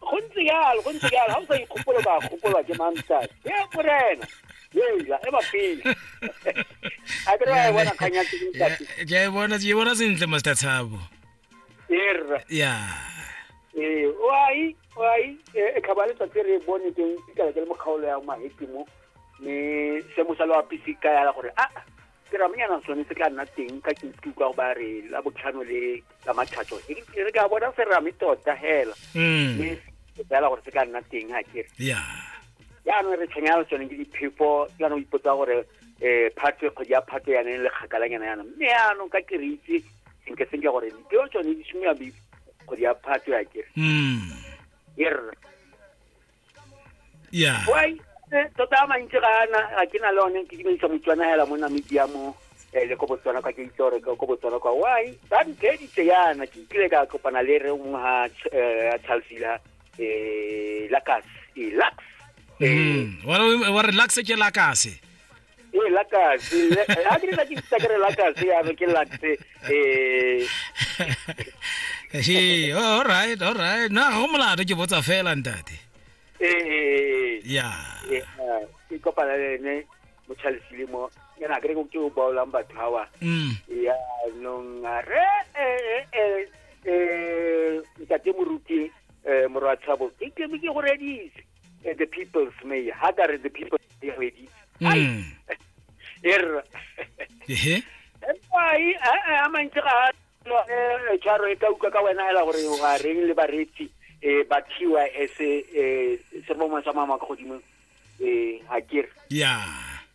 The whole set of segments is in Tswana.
go ntse yalo go ntse yalo ga o sa ikgopolo ba gopolwa ke mamsas e morena eja e bapele a ke re wa e bona kganya ja e bona je bona sentle master tshabo erra ya eh wai wai e, e khabale tsa tsere e bone teng ikala ke le mokgaolo ya mahepimo me se mo sa lo apisi ka ya gore a ah, teramenyana sone se tla nna teng ka ke utlwe kwa ba re la botlhano le la mathatso e ke re ka bona serame tota hela mm. mme ke tsela gore se ka nna teng ga kere jaanong re tshwenyana le tsone ke diphefo ke yana o ipotsa gore um phatwe kgwedi ya phatwe yane e le kgakalanyana yana mme yaanong ka ke re itse senke senke gore dipeo tsone di simolola kgwedi ya phatwe ya kere mm. e rra yeah why eh, tota a mantsi ga ana ga ke na le one ke dimedisa motswana hela mo namibia mo eh, le ko botswana kwa ke itse gore ko botswana kwa why ba ntheditse yana ke kile ka kopana le re nngwe ga eh, a chalsila um lacas e lax Mm. wa re- wa relax ke lakase ee la kasi a ke nna ke itsa ke re la kasi ya ke lakse eh he oh, all right all right na go molato ke botsa fela ntate eh, eh, eh. ya ke kopana le ene mo chalisile mo ke na kere ke o baolang batho hawa mm. ya nong re eh eh eh ntate moruti eh morwa tshabo ke ke ke go redise eh, the people's mayor ha ka re the people's mayor wedi Mm. er Ehe. ai a mantse ga lone tshwaro e ka utlwa ka wena hela gore wa reng le baretsi eh ba thiwa e se eh se bomwa sa mama ka godimo eh ha ke re Yeah.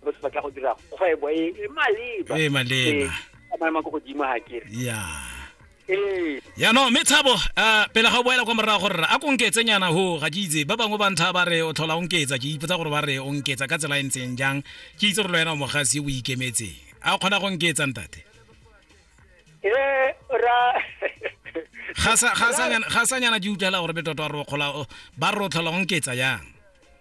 ba se batla go dira kgwebo e e maleba e maleba a maemo a ko godimo ga kere ya ee yaanong mme tshabo um pele ga o boela kwa morago gore a ko nketse nyana ho ga ke itse ba bangwe ba ntha ba re o tlhola o nketsa ke ipotsa gore ba re o nketsa ka tsela e ntseng jang ke itse gore lo wena o mogasi o ikemetseng a o kgona go nketsa ntate ee ra ga sa nyana ke utlwela gore betoto ba re o tlhola o nketsa yang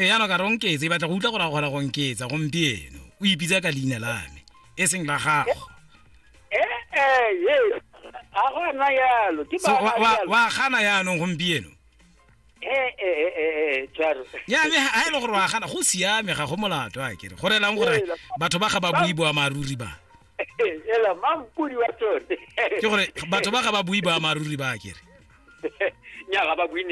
e yana ka ronketse e batla go utlwa gore gore go nketsa gompieno o ipitsa ka leina la me e seng la gago eh, eh, yes a gona yalo ke ba wa gana yaanong gompieno eh, ya me ga e le gore wa gana go siame ga go molato a kere go relang gore batho ba ga ba bui boamaruri ba ke gore batho ba ga ba bui boamaruri ba kere